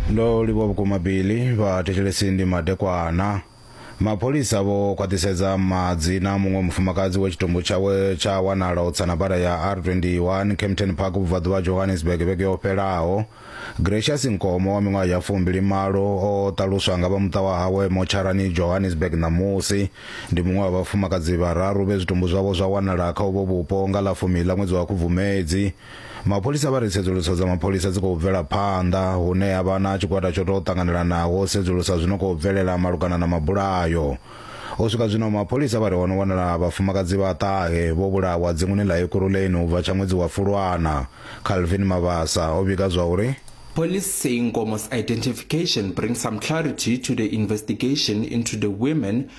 ndo livhuwa vhukuma bili vhathetshelesi ndi madekwana mapholisa vho khwaṱhisedza madzina a muṅwe mufumakadzi we tshitumbu tshawe tsha wanala u tsana bada ya r21 campton park vhubvaḓuvha ha johannesburg vhege yo fhelaho gracious nkomo wa miṅwaha ya fumbili malo o ṱaluswa nga vha muṱa wa hawe motsharani johannesburg ṋamusi ndi muṅwe wa vhafumakadzi vhararu vhe zwitumbu zwavho zwa wanala kha uvho vhupo nga ḽa fumi ḽa ṅwedzi wa khubvumedzi mapholisa vha ri tsedzuluso dza mapholisa dzi khou bvela phanḓa hune ha vha na tshigwada tsho tou ṱanganelanaho u sedzulusa zwino khou bvelela malugana na mabulayo u swika zwino mapholisa vha ri ho no wanala vhafumakadzi vha ṱahe vho vhulawa dzinguni ḽa ekuruleni u bva tsha ṅwedzi wa fulwana calvin mabasa o vhiga zwa uri Police say Nkomo's identification brings some clarity to the investigation into the women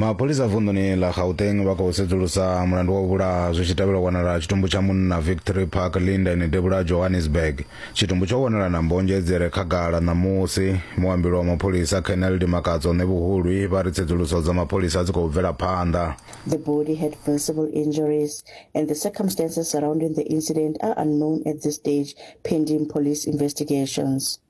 mapholisa vunḓuni ḽa gauteng vha khou sedzulusa mulandu wa u vhulaha zwi tshi tevhela u wanala tshitumbu tsha munna victory park linden debula johannesburg tshitumbu tsho wanala na mbonzhe dzi re khagala ṋamusi muambili wa mapholisa colonel dimakadzo ṋevhuhulwi vha ri tsedzuluso dza mapholisa dzi khou bvela phanḓa The body had visible injuries, and the circumstances surrounding the incident are unknown at this stage, pending police investigations.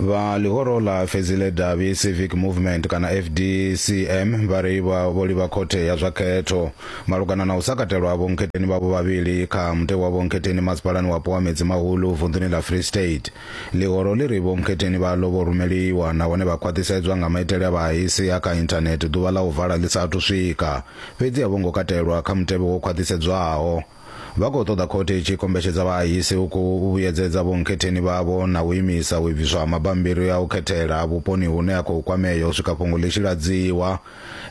vha ḽihoro ḽa fedzile davhi civic movement kana fdcm vha ri vha vho livha khothe ya zwa khetho malugana na u sa katelwa ha vhonkhetheni vhavho vhavhili kha mutevhe wa vhonkhetheni masipalani wapo wa medzi mahulu vunḓuni ḽa free state Ḽihoro ḽi ri vhonkhetheni vha ḽo vho rumeliwa nahone vha khwaṱhisedzwa nga maitele a vhahaisi a kha inthanethe ḓuvha ḽa u vala ḽi sa athu swika, fhedzi a vho ngo katelwa kha mutevhe wo khwaṱhisedzwaho. Vha khou ṱoḓa khothe i tshi kombetshedza vhahahisi u khou vhuyedzedza vhonkhetheni vhavho na u imisa u ibviswa ha mabambiri a u khethela vhuponi hune a khou kwamea u swika fhungo ḽi tshi ladziwa.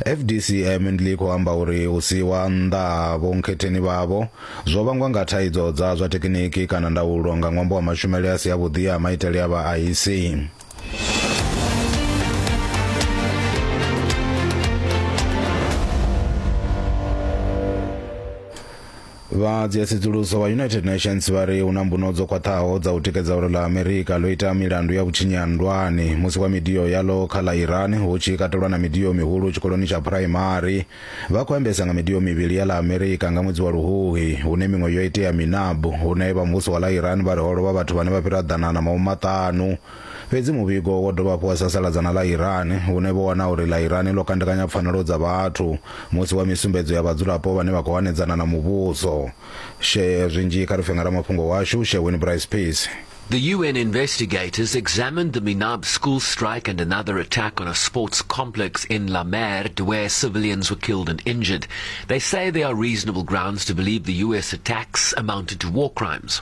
FDCM ndi khou amba uri u siiwa nnḓa ha vhonkhetheni vhavho zwo vhangwa nga thaidzo dza zwa thekiniki kana ndaulo nga ṅwambo wa mashumele a si avhuḓi a maitele a vhaaisi. Vha dzia tsedzuluso vha United Nations vha ri hu na mbuno dzo khwaṱhaho dza u tikedza uri ḽa Amerika ḽo ita milandu ya vhutshinyi ha nndwani musi kwa midio yaḽo kha ḽa Iran hu tshi katelwa na midio mihulu tshikoloni tsha phuraimari. Vha khou ambesa nga midio mivhili ya ḽa Amerika nga ṅwedzi wa Luhuhi, hune miṅwe yo itea Minab, hune vha muvhuso wa ḽa Iran vha ri ho lovha vhathu vhane vha fhira ḓana na mahumaṱanu. Fhedzi muvhigo wo dovha hafhu wa sasaladza na ḽa Iran, vhune vho wana uri ḽa Iran ḽo kandekanya pfanelo dza vhathu musi wa misumbedzo ya vhadzulapo vhane vha khou hanedzana na muvhuso. Share zwinzhi kha lufhengaramafhungo washu, Share Win Bryce Pease. The UN investigators examined the Minab school strike and another attack on a sports complex in La Merde where civilians were killed and injured. They say there are reasonable grounds to believe the US attacks amounted to war crimes.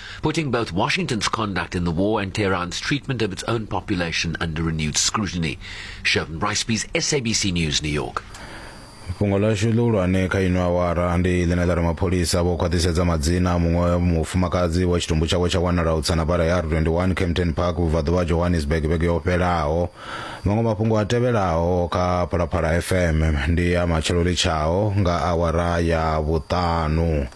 putting both Washington's conduct in the war and Tehran's treatment of its own population under renewed scrutiny. Shervin Ricebees, SABC News, New York. fhungo ḽashu ḽihulwane kha ino awara ndi ḽine ḽa ri mapholisa vho khwaṱhisedza madzina a muṅwe mufumakadzi wa tshitumbu tshawe tsha wanala u tsana bara ya r21 campton park vhubvaḓuvha ha johannesburg vhege yo fhelaho maṅwe mafhungo a tevhelaho kha phalaphala fm ndi a matshelo litshaho nga awara ya vhuṱanu